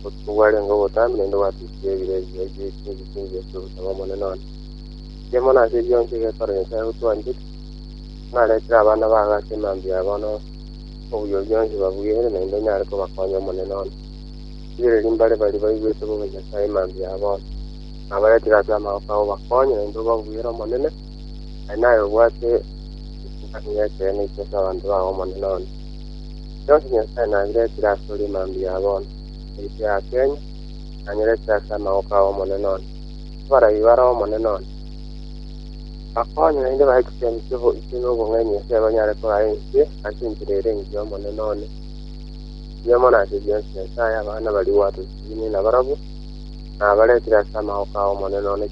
Obotuko bwarenge obotambe naende gwatukirie ebiro ebiya ebiaito ebisinge ase ogosaba Omonene one. Inche mono ase ebi bionsi egetware Nyasae gotwanchete, naretire abana bago ase emambia ya bono obuya bionsi babweire naende onyare kobakonya Omonene one. Rigereria mbare baria baigwete bobe Nyasae emambia ya bono, nabaretire ase amaboko ao obakonye naende obabwere Omonene, Aye naye obwate ekibaani ekeene ichia ki'abanto ba Omonene one. Inche onsi Nyasae nabiretire asore mambia ya bono, ebibe ya Kenya nanyeretire ase amaboko ay'Omonene one, abarai bare Omonene one, bakonye naende bae chisemi chi'oboiche nobong'aini ase abanyare korara inse ase enchera ere engiya Omonene one. Ebiyomo na ase bionsi Nyasae abana baria gwatotinie nabarabwo, nabaretire ase amaboko ay'Omonene one.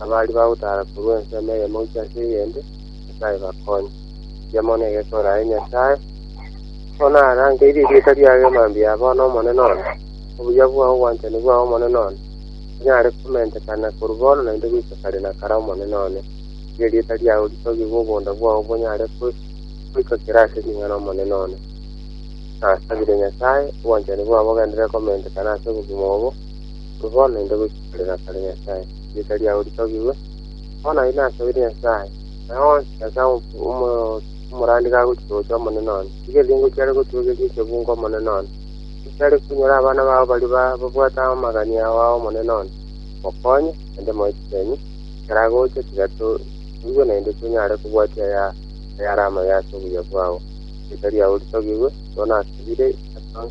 abari bagotara korwa ensemo eyemo gochia ase eyende, Nyasae bakonye. Erio mono egesooro aye Nyasae, bono arangeire erieta riaye mambia ya bono Omonene one, obuya bwao, obwanchani bwao Omonene one, bonyare komentekana korwa bono naende goika kare na kare Omonene one. Tiga erieta riao ritogigwe obonda bwao bonyare goika kera ase ring'ana Omonene one. Nasabire Nyasae, obwanchani bwao bogenderere komentekana ase obogima obo, Korwa bono naende goika kare na kare, Nyasae, rieta riao ritogigwe. Bono aye nasoire Nyasae, na onsi Nyasae omorandi gagochika gochia Omonene one, tiga ebiungo chiare gotuegeria echebunga Omonene one, echiare konyora abana bao baria babwate amagania ao a Omonene one. Mokonye, naende moe chisenyi, ekero agocha, tiga toigwe naende tonyare kobwatia ayare amaya ase obuya bwao. Rieta riao ritogigwe, korwa nasobire, Nyasae.